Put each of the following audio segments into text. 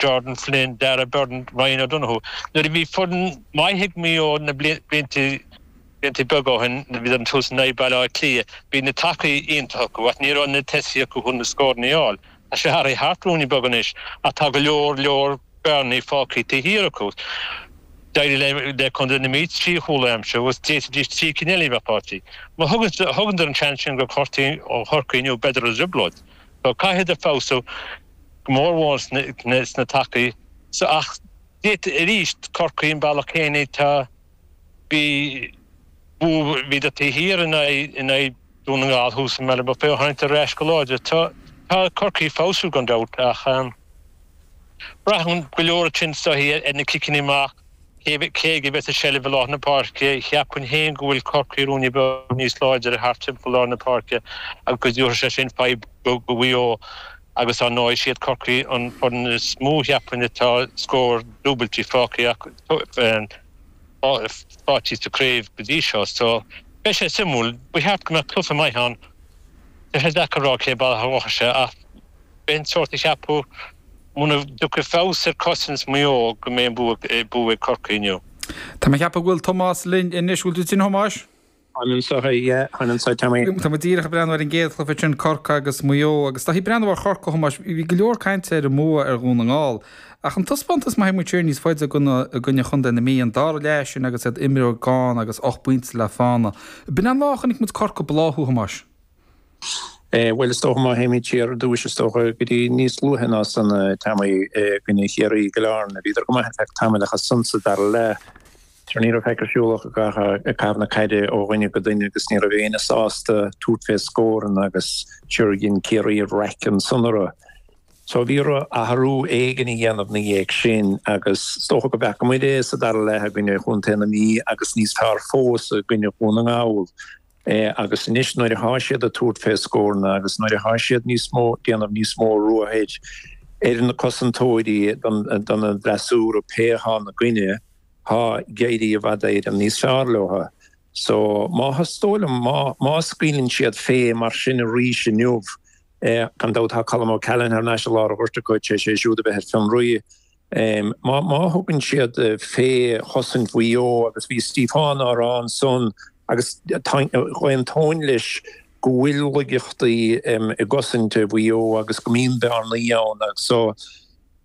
Jordan Flynn, Darragh Byrne, Ryan O'Donoghue. Nuair a bhí foireann mhaith ag Maigh Eo na blianta beaga ó shin nuair a bhíodar ag tabhairt in aghaidh Baile Átha Cliath, bhí na tacaí iontach acu ach ní raibh na tosaithe acu leis na scóranna a fháil. Tá sé athraithe thart rúinne beag anois ach tá go leor leor bearnaí fágtha taobh thiar acu. D'éirigh le Contae na Mí trí chúl a aimsiú agus d'fhéadfaidís trí cinn eile a bheith faighte acu. Má thugann siad an seans sin go Corcaigh inniu beidh siad i dtrioblóid. So caithfidh siad feabhsú. go mór mór sna tacaí so ach d'fhéadfadh arís Corcaigh an bealach céanna tá bhí bhíodar taobh thiar in aghaidh in aghaidh Dún na nGall thuas i mBealach Féich tháinig siad ar ais go láidir tá tá Corcaigh ag feabhsú gan dabht ach braitheann go leor ansin sa gcaoi ar na ciceanna amach Cé cé a bheas i seilbh i lár na páirce, cheapfainn féin go bhfuil Corcaigh rúinne beag níos láidre thart timpeall lár na páirce agus tabharfaidh sé sin fadhb do Mhaigh Eo agus ar ndóigh is iad Corcaigh an fhoireann is mó a cheapfainn atá scóranna dúbailte faighte acu sa craobh go dtí seo so beidh sé suimiúil. Ba cheart go mbeadh cluiche maith ann. Tá sé deacair a rá cé a bhuafas ach. Bheinn sórt ag ceapadh muna dtiocfaidh feabhas ar chosaint Mhaigh Eo go mbeidh an bua ag Corcaigh inniu. Tá mé ag ceapadh go bhfuil Tomás linn anois. Bhfuil tú linn a Thomáis? Táim anseo, yeah, táim anseo Tommy. Tá muid díreach ag breathnú ar an gcéad chluiche sin, Corcaigh agus Maigh Eo, agus is dóigh ag breathnú ar Chorcaigh a Thomáis, bhí go leor cainte ar an mbua ar Dhún na nGall. Ach an taispeántas má théann muid siar níos faide i gcoinne Chontae na Mí, an dara leath sin agus iad imreoir gann agus ocht bpointe le fána. B'in an uair a chonaic muid Corcaigh ag bláthú a Thomáis. Eh, bhuel, is dócha má théimid siar ar dtúis, is dócha go dtí níos luaithe ná san a eh, Tommy eh, i gcoinne Chiarraí i gCill Airne bhíodar go maith ar feadh tamaill ach ansan sa dara leath Sure ní raibh faic ar siúl ach ag eh, caitheamh na caide ó dhuine go duine agus ní raibh éinne sásta tabhairt fé scóranna agus sure dhein Ciarraí raic ansan orthu. So bhí orthu athrú éigin a dhéanamh ina dhiaidh sin agus is dócha go bhfeaca muid é sa dara leath i gcoinne Chontae na Mí agus níos fearr fós i gcoinne Dhún na nGall. Agus anois nuair athá siad ag tabhairt fé scóranna agus nuair athá siad níos mó déanamh níos mó ruathair ar na cosantóirí don fhreasúra pé thá ina gcoinne thá ag éirí i bhfad éirim níos fearr leotha. So measaim má má scaoileann siad fé mar sin arís inniu gan dabht thá Colm O'Callaghan thar n-ais i lár an ghoirt acu tar éis é siúd a bheith ar fionraí Má thugann siad fé chosaint Mhaigh Eo agus bhí Stiofán á rá ansan agus d'aontóinn leis go bhfuil laigeachtaí i gcosaint Mhaigh Eo agus go mbíonn bearnaí ann agus sa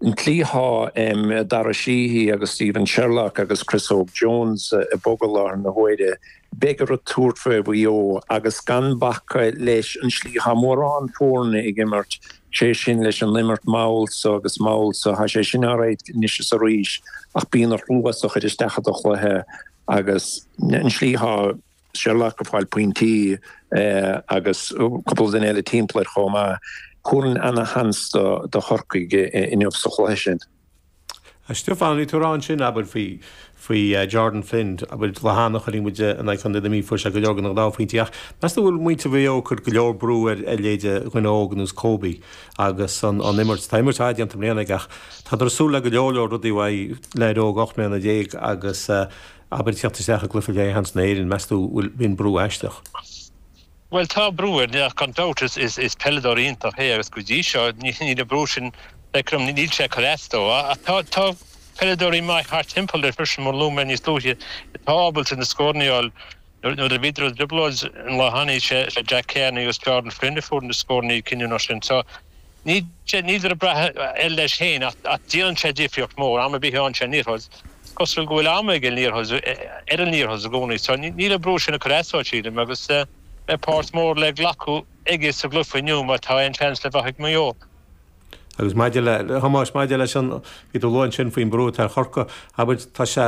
tslí atá Dara Sheedy agus Stephen Sherlock agus Chris Óg Jones ag bogadh i láthair na huaire, beidh orthu tabhairt fé Mhaigh Eo agus gan bacadh leis an tslí atá mórán foirne ag imirt sé sin leis an imirt mall so agus mall so thá sé sin á rá anois is arís ach bíonn a thrua sa chuid isteach i do chluiche agus an slí thá sé ullamh go fáil pointí agus cúpla duine eile timpeall air chomh maith. Tugann ana-sheans do Chorcaigh inniu sa chluiche sin. Stiofán, bhí tú ann sin, abair, faoi Jordan Flynn, abair, lá cheana chuirfidh muid in aghaidh Chontae na Mí, fuair sé go leor scór dhá phointe, ach meas tú go bhfuil muintir Mhaigh Eo ag cur go leor brú ar leithéide dhuine óg ar nós Kobe agus an imirt, tá imirt fhada déanta mbliana aige ach tádar ag súil le go leor leor rudaí uaidh, leaid óg ocht mbliana déag agus, abair, teacht isteach i gcluiche leathcheannais Éireann, meas tú go bhfuil, an brú aisteach? Bhuel tá brú air gan dabht, is peileadóir iontach é agus go dtí seo níl an brú sin ag cur níl sé ag cur as dó ach tá peileadóirí maith thart timpeall air freisin mar luaigh mé níos luaithe atá ábalta na scóranna a fháil. Nuair a bhíodar i dtrioblóid an lá cheana, is é Jack Carney agus Jordan Flynn a fuair na scóranna cinniúnacha sin. Níl siad ag brath air leis féin ach déanann sé difríocht mór am ar bith a fhaigheann sé an liathróid. Is cosúil go bhfuil am aige an liathróid ar an liathróid i gcónaí so níl an brú sin ag cur as dó sílim agus beidh páirt mór le glacadh aige sa gcluiche inniu má tá aon seans le bheith ag Maigh Eo. Agus maidir le, a Thomáis, maidir leis an, bhí tú ag lua ansin faoin brú atá ar Chorcaigh, abair tá sé,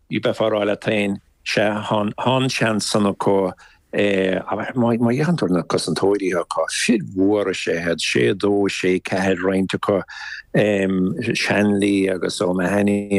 Bheifeá a rá leat féin, sea, thá an seans san acu, ach má fhéachann tú ar na cosantóirí acu, fir mhóra, is ea iad, sé a dó, sé a ceathair roinnt acu, Shanley agus O'Mahony,